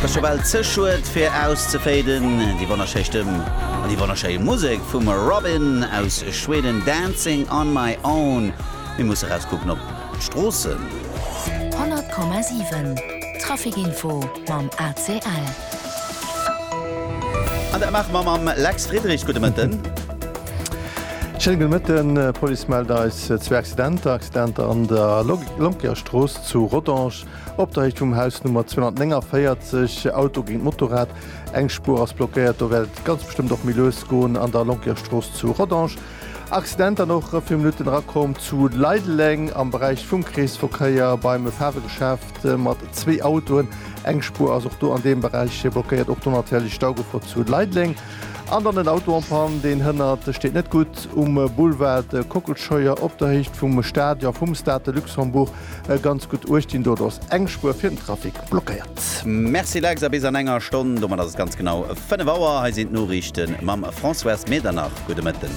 T'ass scho bal ze schued fir auszeféiden, déi wonnerschéi Stëmm an déi wonnerschéi Musek vum Robyn aus Schweden, Dancing on my own. Mir musse rauskucken op d'Stroossen. 100,7 Traficinfo mam ACL. An dat maache mer mam Lex Friedrich. Gudde Mëtten. Schéine gudde Mëtten. D'Police mellt eis zwee Accidenter, Accidenter an der Lonkierstrooss zu Rodange Op der Héicht vum Haus Nummer 249, Auto géint Motorrad, eng Spuer ass blockéiert, do wäert et ganz bestëmmt och méi lues goen an der Lonquerstrooss zu Rodange. Accident dann och viru Minutten erakomm zu Leideleng am Beräich vum Kreesverkéier beim Faarwegeschäft mat zwee Autoen, eng Spuer ass och do an deem Beräich blockéiert. Och do natierlech Staugefor zu Leideleng. An dann en Auto en Panne, deen hënnert steet net gutt um Boulevard Kockelscheuer op der Héicht vum Stadion vum Stade de Luxembourg. E ganz gutt uechtginn do, do ass eng Spuer fir den Trafic blockéiert. Merci Lex, a bis an enger Stonn, domat ass et ganz genau 5 Auer. Hei sinn d'Noriichte mam Françoise Medernach. Gudde Mëtten.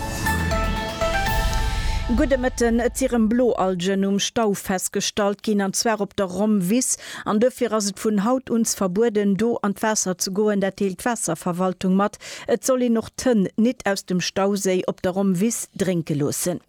Gudde Mëtten. Et si rëm Bloalgen um Stau festgestallt ginn, an zwar op der Rommwiss. An dofir ass et vun haut uns verbueden, do an d'Waasser ze goen. Dat deelt d'Waasserverwaltung mat. Et soll een och d'Hënn nit aus dem Stauséi op der Rommwiss drénke loossen.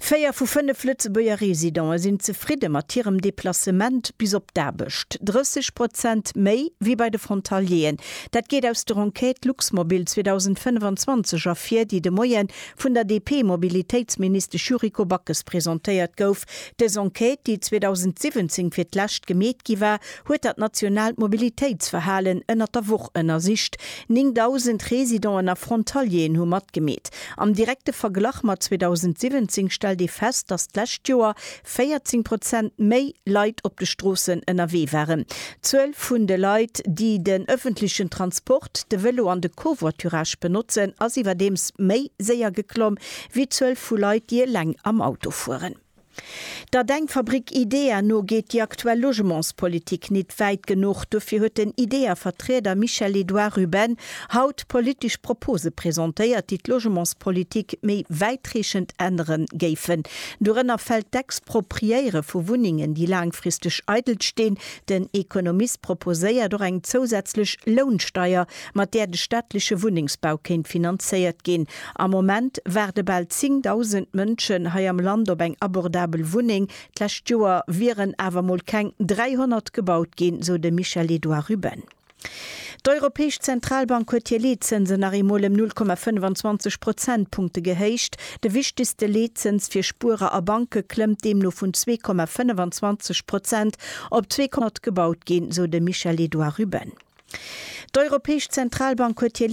Véier vu fënnef Lëtzebuerger Residente sinn zefridde mat hirem Deplacement bis op d'Aarbecht, 30 Prozent méi wéi bei de Frontalieren. Dat geet aus der Enquête Luxmobil 2025 ervir, déi de Moie vun der DP-Mobilitéitsministesch Yuriko Backes presentéiert gouf. Dës Enquête, déi 2017 fir d'lescht gemeet gi war, huet dat nationaalt Mobilitéitsverhalen ënnert der Woch ënnersicht. 9.000 Residenten a Frontalieren hu matgemeet. Am direkte Verglach mat 2017 stellt ee fest, datt d'lescht Joer 14 Prozent méi Leit op de Stroossen ënnerwee waren. D'Zuel vun de Leit, déi den ëffentlechen Transport, de Vélo an de Covoiturage benotzen, ass iwwerdeems méi séier geklomm, wéi d'Zuel vu Leit, déi eleng am Auto fueren. Der Denkfabrik IDEA no geet déi aktuell Logementspolitik nit wäit genuch. Dofir huet den IDEA-Vertrieder Michel Edouard Ruben haut politesch Propose presentéiert, déi d'Logementspolitik méi wäitreechend ännere géifen. Dorënner fält d'Expropriéiere vu Wunnengen, déi laangfristeg eidel stinn. Den Economist proposéiert och eng zousätzlech Lounsteier, mat där de staatleche Wunnengsbau kéint finanzéiert ginn. Am Moment waarde bal 10.000 Mënschen hei am Land op eng abordabel Wunneng. D'lescht Joer wieren awer mol keng 300 gebaut ginn, sou de Michel-Edouard Ruben. D'Europäesch Zentralbank huet hir Leetzënsen nach eemol ëm 0,25 Prozentpunkte gehéicht. De wichtegste Leetzëns fir Spuerer a Banke klëmmt deemno vun 2,25 Prozent Op zwee Konte gebaut ginn, sou de Michel-Edouard Ruben. D'Europäesch Zentralbank huet hir